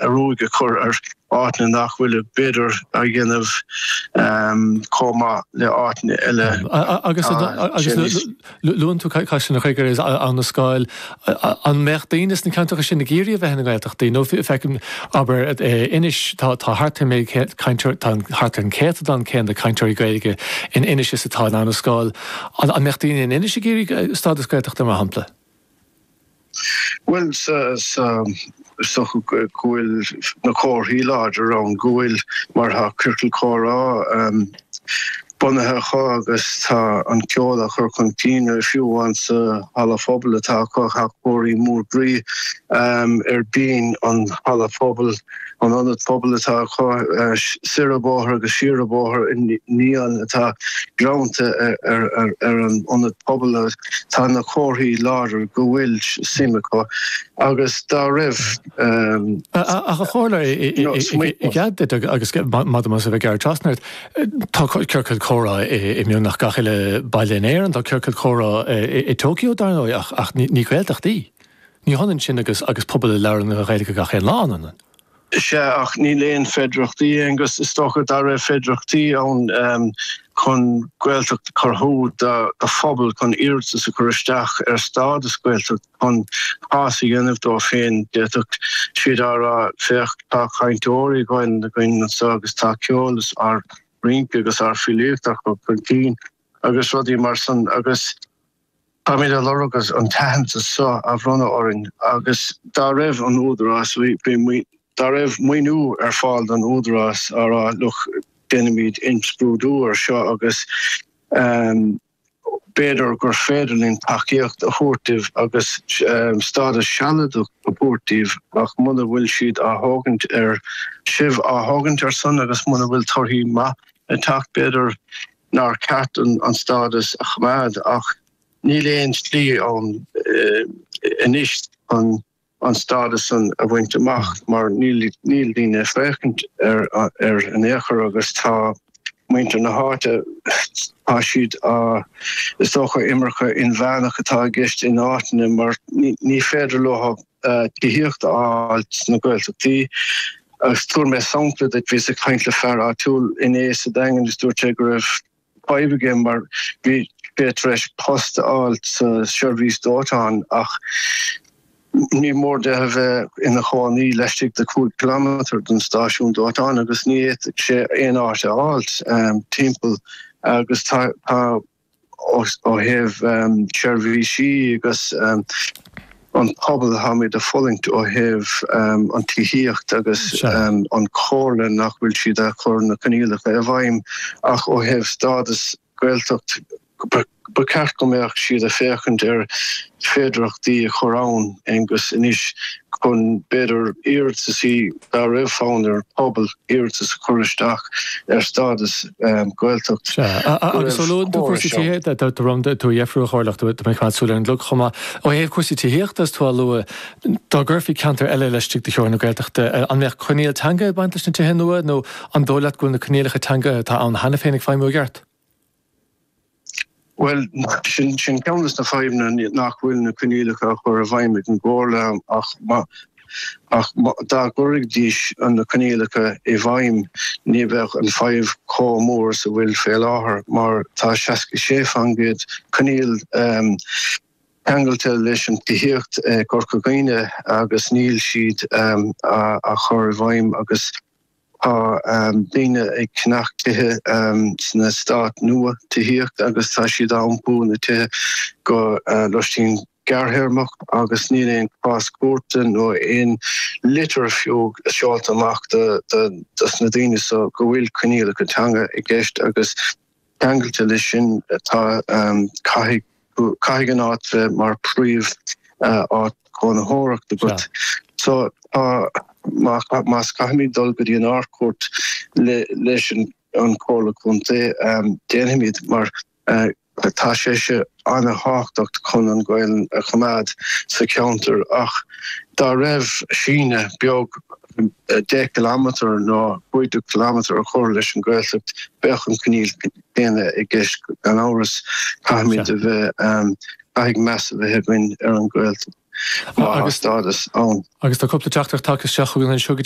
a ruaig a chur ar áiteanna nach bhfuil b'fhéidir ag déanamh chomh maith le áiteanna eile. Agus luann tú Caisleán Ghriaire is Abhainn an Scáil. An mbeadh daoine sna ceantracha sin ag iarraidh a bheith ina nGaeltachtaí? Nó feicim, abair, Inis, tá thart ar méid cainteoir, tá thart ar an céatadán céanna cainteoirí Gaeilge in Inis is atá in Abhainn an Scáil. An mbeadh daoine in Inis ag iarraidh stádas Gaeltachta, mar shampla? Bhuel, is dócha go bhfuil na comharthaí láidir ann go bhfuil, mar atá Ciorcal Comhrá bunaithe acu agus tá an ceol á chur chun cinn acu fiú amháin sa halla pobail atá acu, tá Cóilín mór groí ar bhinn an halla pobail. An ionad pobail atá acu soir an bóthar agus siar an bóthar an dán atá greannta ar an ionad pobail agus tá na comharthaí láidir go bhfuil suim acu agus dá raibh. Ach a Chomhairleoir i gcead duit agus maith dom as a bheith ag gearradh trasna ort, tá ciorcail comhrá i mbeagnach gach uile baile in Éirinn, tá ciorcal comhrá i dTóiceo dar ndóigh ach ní Gaeltacht í. Ach ní hionann sin agus agus pobal a labhrann an Ghaeilge gach aon lá, an ionann? Sea, ach níl aon féidearthachtaí agus is dócha, dá raibh féidearthachtaí ann chun Gaeltacht a chruthú do phobal, chun iarratas a chur isteach ar stádas Gaeltachta, chun cás a dhéanamh dóibh féin, d'fhéadfadh siad a rá, féach, tá cainteoirí Gaelainne againn anso agus tá ár gceol is ár rince agus ár bhfilíocht á chur chun cinn agus rudaí mar san agus. Táimid ag lorg an t-aitheantas seo a bhronnadh orainn agus dá raibh an Údarás, dá raibh maoiniú ar fáil don Údarás a rá, look, déanfaimid imscrúdú ar seo agus b'fhéidir gur féidir linn tacaíocht a thabhairt daoibh agus stádas sealadach a thabhairt daoibh ach muna bhfuil siad ag tógaint ar, sibh ag tógaint air san agus muna bhfuil torthaí maithe ag teacht b'fhéidir nár cheart an stádas a choimeád ach níl aon slí ann anois chun an stádas san a bhaint amach mar níl daoine ag féachaint air in aon chor agus tá muintir na háite, tá siad á, is dócha imirce inmheánach atá i gceist in áiteanna mar ní féidir leo tithíocht a fháil sna Gaeltachtaí agus tabharfaidh mé sampla duit, bhíos ag caint le fear áitiúil inné sa Daingean is dúirt sé go raibh fadhb aige mar bhí sé tar éis post a fháil sa seirbhís dóiteáin ach níor mhór dó a bheith ina chónaí laistigh de 5 kilometer den stáisiún dóiteáin agus ní fhéadfadh sé aon áit a fháil timpeall agus tá ó thaobh seirbhísí agus an pobal táimid ag fulaingt ó thaobh an tithíocht agus an chomhairle nach bhfuil siad ag cur na coinníollacha i bhfeidhm ach ó thaobh stádas Gaeltacht ba cheart go mbeadh siad ag féachaint ar féidearthachtaí a chur ann agus anois chun b'fhéidir iarratas i Ná raibh fonn ar an bpobal iarratas a chur isteach ar stádas Gaeltachta. Sea, agus ó luann tú cúrsaí tithíochta, tá orm tú a dheifriú a Chomhairleoir, tá mé ag coimeád súil ar an gclog chomh maith, ó thaobh cúrsaí tithíochta is tú á lua, dá gcuirfí ceantar eile laistigh de theorainn na Gaeltachta, an mbeadh coinníoll teanga ag baint leis na tithe nua nó an dóigh leat go bhfuil na coinníollacha teanga atá ann cheana féin ag feidhmiú i gceart? Bhuel, sin ceann de na fadhbanna, nach bhfuil na coinníollacha á chur i bhfeidhm ag an gComhairle ach dá gcuirfidís na coinníollacha i bhfeidhm ní bheadh an fadhb chomh mór is a bhfuil sé fé láthair mar tá 66% coinníoll teanga ceangailte leis an tithíocht i gCorca Dhuibhne agus níl siad á chur i bhfeidhm agus Tá daoine ag ceannach tithe sna heastáit nua tithíochta agus tá siad á iompú ina tithe go loistín gearrthéarmach agus níl aon cás cúirte nó aon litir fiú seolta amach dos na daoine so go bhfuil coinníollacha teanga i gceist agus Ceangailte leis sin, caithfidh an áit bheith mar príomháit chónaitheachta agat. So, más caithfimid dul go dtí an Ard-Chúirt leis an Chomhairle Contae, déanfaimid, mar tá sé seo an-thábhachtach chun an Ghaelainn a choimeád sa cheantar ach dá raibh síneadh beag 10 km nó 15 km a chur leis an Ghaeltacht bheadh an coinníoll céanna i gceist gan amhras, caithfimid a bheith, caithfidh meas a bheith againn ar an Ghaeltacht, agus an stádas ann. Agus tá cúpla teachtaireacht tagtha isteach chugainn anseo go dtí.